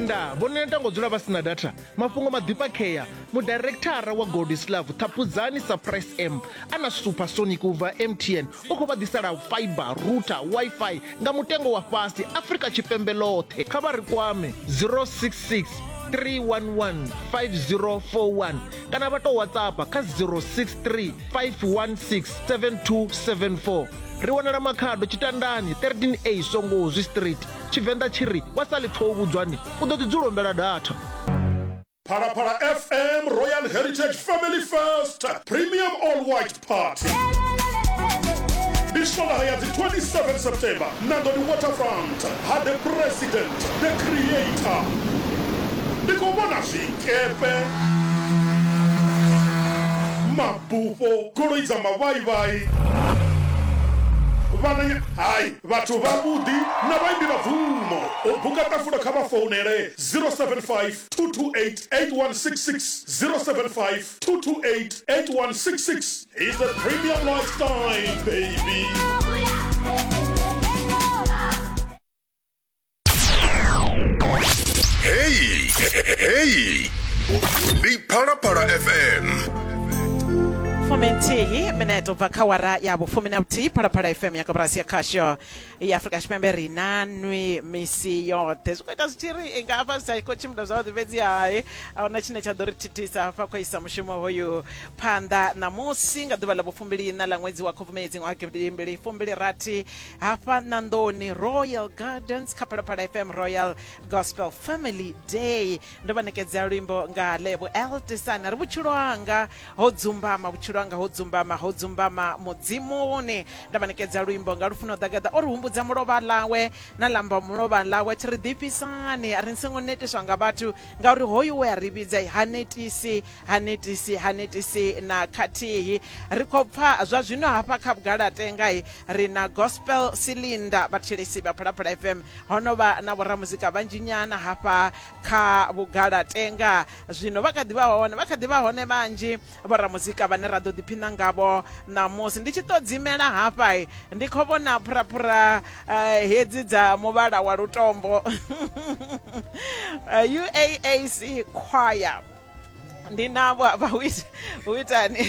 nda vho neta ngo dzula vha sina data mafhungo maḓifhakhea mudirekthara wa goldislav ṱhaphudzani surprise m a na super sonic u bva mtn u khou vha ḓisela fiber router wifi nga mutengo wa fhasi afrika tshipembe ḽoṱhe kha vha ri kwame 066 311 5041 kana vha tou whatsapp kha 063 516 7274 ri wanala makhado tshitandani 13 a songo zwi street Tshivenḓa tshi ri, Wa sa ḽi pfa u vhudzwani, u ḓo ḓi dzula u humbela datha. Phalaphala FM Royal Heritage Family First Premium All White Party Ndi swondaha ya dzi 27 September Nandoni Waterfront ha The President The Creator Ndi khou vhona zwikepe, mabufho, goloi dza mavhaivhai, vhananya, hai. Vhathu vhavhuḓi na vhaimbi vha bvumo. U buka ṱafulo kha vha founele 0752288166, 0752288166. He's a premium lifestyle baby. Hey, hey. Ndi Phalaphala FM. fumi nthihi minete ubva kha wara ya vhufumi na vhuthihi phalaphala fm ya koporasi ya khasho ya afurika tshipembe ri na nwi misi yoṱhe zwi khou ita zwi tshi ri i nga hafha zwi sa khou tshimbila zwavhuḓi fhedzi hai a huna tshine tsha ḓo ri thithisa hafha khou isa mushumo hoyu phanḓa ṋamusi nga ḓuvha ḽa vhufumbiliina ḽa ṅwedzi wa khubvumedzi ṅwaha gidimbili fumbili rathi hafha ṋanḓoni royal gardens kha phalaphala fm royal gospel family day ndo vha ṋekedzea luimbo nga lebo eltisana ri vhutshilo hanga ho dzumbama vhutshilo hanga ho dzumbama ho dzumbama mudzimuni ndo vha ṋekedza luimbo nga lufuno ḓagaḓa o ri humbudza mulovha ḽawe na lamba mulovha ḽawe thi ri ḓifhisani a ri ni songo netiswa nga vhathu ngauri hoyu we a ri vhidza ha netisi Ha netisi, ha netisi na khathihi. Ri khou pfa zwa zwino hafha kha Vhugalatenga he ri na Gospel Cylinder, vhathetshelesi vha Phalaphala FM. Ho no vha na vhoramuzika vhanzhi nyana hafha kha Vhugalatenga. Zwino vha kha ḓi vha hone, vha kha ḓi vha hone vhanzhi vhoramuzika vhane ra ḓo ḓiphina ngavho ṋamusi. Ndi tshi tou dzimela hafha, ndi khou vhona phuraphura eh, hedzi dza muvhala wa lutombo. UAAC Choir. ndi navho hafha hu ita- hu itani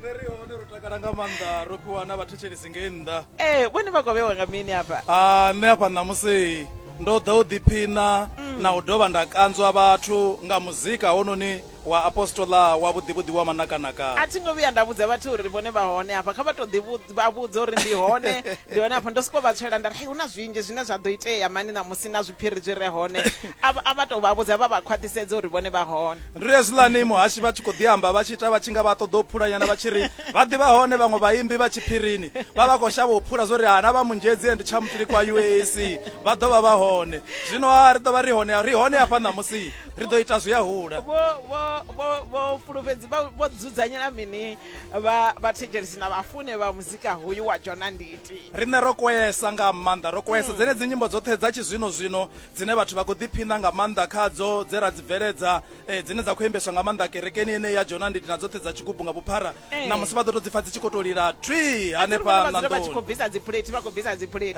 nṋe ri hone ro takala nga maanḓa ro fhiwa na vhathetshelesi ngei nnḓa ee vhone vha kovhewa nga mini hafha Ah, nṋe hafha ṋamusi ndo ḓa u ḓiphina na u dovha nda kanzwa vhathu nga muzika hononi wa apostola wa vhuḓivhuḓi wa a manakanaka thi ngo vhuya nda vhudza vhathu uri vhone vha hone hafha kha vha to ḓi vhu- vha vhudza uri ndi hone ndi hone afho ndo sokou vha tswela nda ri hei hu na zwinzhi zwine zwa ḓo itea mani ṋamusi na zwiphiri zwi re hone a vha- a vha tou vha vhudza vha vha khwaṱhisedza uri vhone vha hone ri hezwiḽani muhashi vha tshi khou ḓi amba vha tshi ita vha tshi nga vha ṱoḓa u phulanyana vha tshi ri vha ḓivha hone vhaṅwe vhaimbi vha tshiphirini vha vha khou shavha u phula zwo ri hana vha munzhedzi and tshamutili kwa uac vha ḓo vha vha hone zwino ha ri ḓo vha ri hone ri hone hafha ṋamusi ri ḓo ita zwi a hula vho vho vho vho fulufhedzi vha- vho dzudzanyela mini vha vhathetshelisi na vhafune vha muzika hoyu wa jona nditi riṋe ro kwesa nga maanḓa ro kwesa mm. dzenedzi nyimbo dzoṱhe dza tshizwino zwino dzine vhathu vha khou ḓiphina nga maanḓa khadzo dze ra dzi bveledza eh, dzine dza khou imbeswa nga maanḓa kerekeni ene ya jona nditi na dzoṱhe dza tshigubu nga vhuphara eh. na musi vha ḓo to dzi pfa dzi tshi khou to lila twi hanefha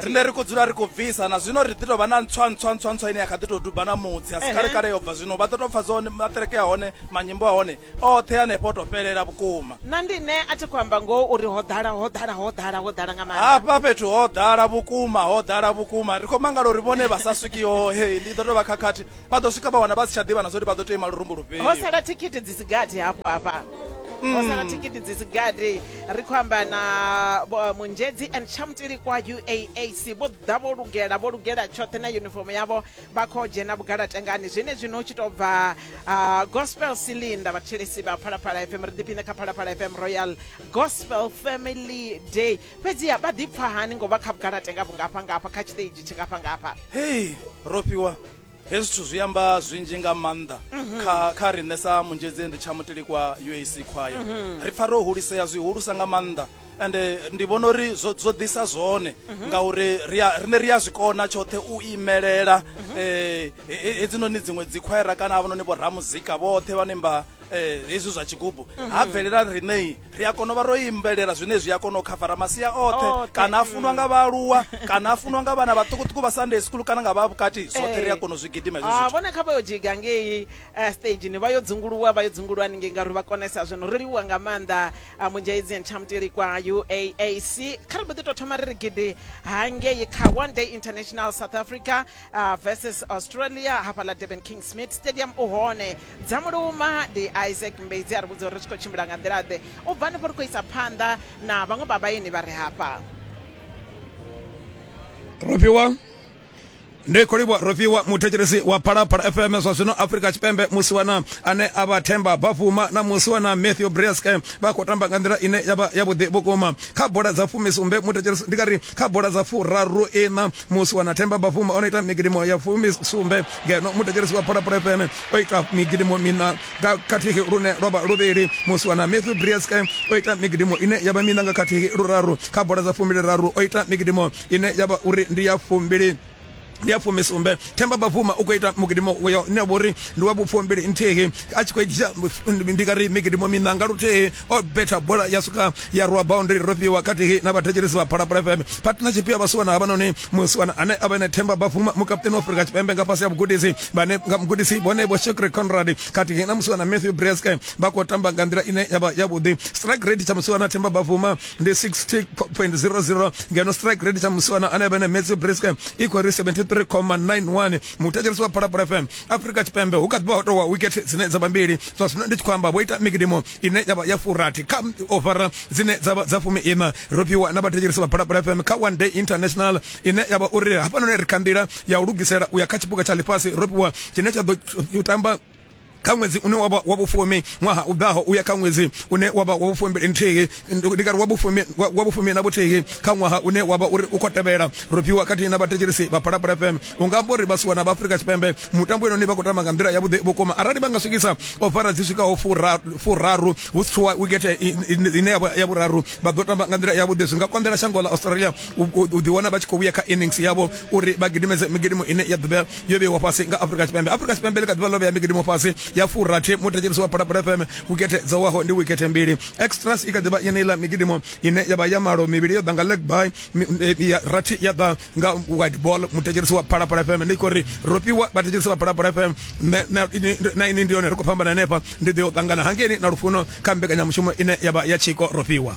riṋe ri khou dzula ri khou bvisa na zwino ri ḓi tovha na ntswa ntswa ntswa ntswa ine ya kha ḓi to duba na mutsi a si kale kale yo bva zwino vha ḓo to pfa zwone maṱereke a hone manyimbo a hone oṱhe hanefho to fhelela vhukuma na ndi ne a thi khou amba ngoho uri ho ḓala ho ḓala ho ḓala ho ḓala nga maanḓa hafha fhethu ho ḓala vhukuma ho ḓala vhukuma ri khou mangala uri vhone vha sa swiki hohe ndi ḓo tou vha khakhathi vha ḓo swika vha wana vha si tsha ḓivha na zwauri vha ḓo tea ima lurumbu lufhio ho sala thikhithi dzi si gathi hafho hafha ho sala hmm. thikhithi dzi si gathi ri khou amba na munzhedzi and chamtili kwa uaac vho ḓa vho lugela vho lugela tshoṱhe na uniform yavho vha khou dzhena vhugalatengani zwenezwino u tshi tou bva uh, gospel cylinder vhathetshelesi vha phalaphala fm ri ḓiphine kha phalaphala fm royal gospel family day fhedziha vha ḓipfa hani ngo vha kha vhugalatenga vhungafha ngafha kha tshiṱeji tshingafha ngafha hei ro fhiwa hezwi zwithu zwi amba zwinzhi nga maanḓa mhm. kha kha riṋe sa munzhedzendi tsha mutelikwa uac khwaya mhm. ri pfa ro hulisea zwihulusa nga maanḓa and eh, ndi vhona uri zwo zwo ḓisa zwone mhm. ngauri rine ri a zwi kona tshoṱhe u imelela um hedzinoni dziṅwe dzikhwaera kana havhanoni vho ramuzika vhoṱhe vhane mba Eh, hezwi zwa tshigubu mhm. ha bvelela riṋei ri a kona u vha ro imbelela zwine zwi a kona u khavara masia oṱhe kana a funwa nga vhaaluwa kana a funwa nga vhana vhaṱukuṱuku vha sunday school kana nga vha vhukati zwoṱhe ri a eh. kona u zwi gidima ah, vhone kha vha yo dzhiga ngei eh, stageni vha yo dzunguluwa vha yo dzunguluwa haningei ngauri vha konesa zwino ri liwa nga maanḓa a mujaizi and chamtili kwa uaac kha ri mbo ḓi tou thoma ri ri gidi hangei kha one day international south africa uh, versus australia hafha ḽa durban king smith stadium u hone dza muluma ndi isaac mbedzi a ri vhudza uri ri tshi khou tshimbila nga nḓila ḓe u bva hanefho ri khou isa phanḓa na vhaṅwe vha vhaeni vha re hafha Robiwa. ndi khou livhuwa rofhiwa muthetshelesi wa phalaphala fm zwa zwino afrika tshipembe musi wana ane a vha themba bafuma na musi wana matthew brieske vha khou tamba nga nḓila ine ya vha yavhuḓi vhukuma kha bola dza fumisumbe muthetshelesi ndi kari kha bola dza furaru iṋa musi wana themba bafuma o no ita migidimo ya fumisumbe ngeno muthetshelesi wa phalaphala fm o ita migidimo mina nga khathihi lune lwa vha luvhili musi wana matthew brieske o ita migidimo ine ya vha mina nga khathihi luraru kha bola dza fumbiliraru o ita migidimo ine ya vha uri ndi ya fumbili ndi ya fumisumbe themba bavuma u khou ita mugidimo uyo ne vho ri ndi wa vhupfumbili nthihi a tshi khou dzhia ndi nga ri migidimo miṋa nga luthihi o betha bola ya swika ya rwa boundary ro fhiwa khathihi na vhathetshelesi vha phalaphala fm partner tshifhiwa vhasiwana havhanoni musiwana ane a vha ene themba bavuma mukaputeni wa afrika tshipembe nga fhasi ya vhugudisi vhane nga mugudisi vhone vho shekre conrad khathihi na musiwana matthew breske vha khou tamba nga nḓila ine ya vha yavhuḓi strike rate tsha musiwana themba bavuma ndi 60.00 ngeno strike rate tsha musiwana ane vha ne matthew briscam i khou ri 73,91 muthetshelesi wa phalaphala fm afrika tshipembe hu kha ḓi vha ho towa wikete dzine dza vha mbili zwa zwino ndi tshi khou amba vho ita mikidimo ine ya vha ya furathi kha ovara dzine dza vha dza fumi ina ro fhiwa na vhathetshelesi vha phalaphala fm kha one day international ine ya vha uri hafhanoni ri kha nḓila ya u lugisela u ya kha tshipuka tsha ḽifhasi ro fhiwa tshine tsha ḓo tamba kha ṅwedzi une wa vha wa vhufumi ṅwaha u ḓaho u ya kha ṅwedzi une wa vha wa vhufumi nthihi ndi kari wa vhufumi wa vhufumi na vhuthihi kha ṅwaha une wa vha uri u khou tevhela ro fhiwa khathihi na vhathetshelisi vha phalaphala fm u nga amba uri vhasiwa na vha afrika tshipembe mutambo inoni vha khou tamba nga nḓila yavhuḓi vhukuma arali vha nga swikisa ofara dzi swikaho furaru hu si tshuwa wikethe ine ya vhuraru vha ḓo tamba nga nḓila yavhuḓi zwi nga konḓela shango ḽa australia u ḓiwana vha tshi khou vhuya kha innings yavho uri vha gidimedze migidimu ine ya ḓivhea yo vheiwa fhasi nga Afrika Tshipembe. Afrika Tshipembe ḽi kha ḓivha ḽo vhea migidimo fhasi ya furathi muthetshelisi wa Phalaphala FM wikethe dzo waho ndi wikethe mbili. Extras i kha ḓivha yeneiḽa migidimo ine ya vha ya malo mivhili yo ḓa nga leg by eh, ya rathi ya ḓa nga wide ball muthetshelisi wa Phalaphala FM. Ndi khou ri ro fhiwa vhathetshelisi vha Phalaphala FM na ini ndi yone ri khou fhambana hanefha ndi ḓo ṱangana hangeni na lufuno kha mbekanyamushumo ine ya vha ya tshiko ro fhiwa.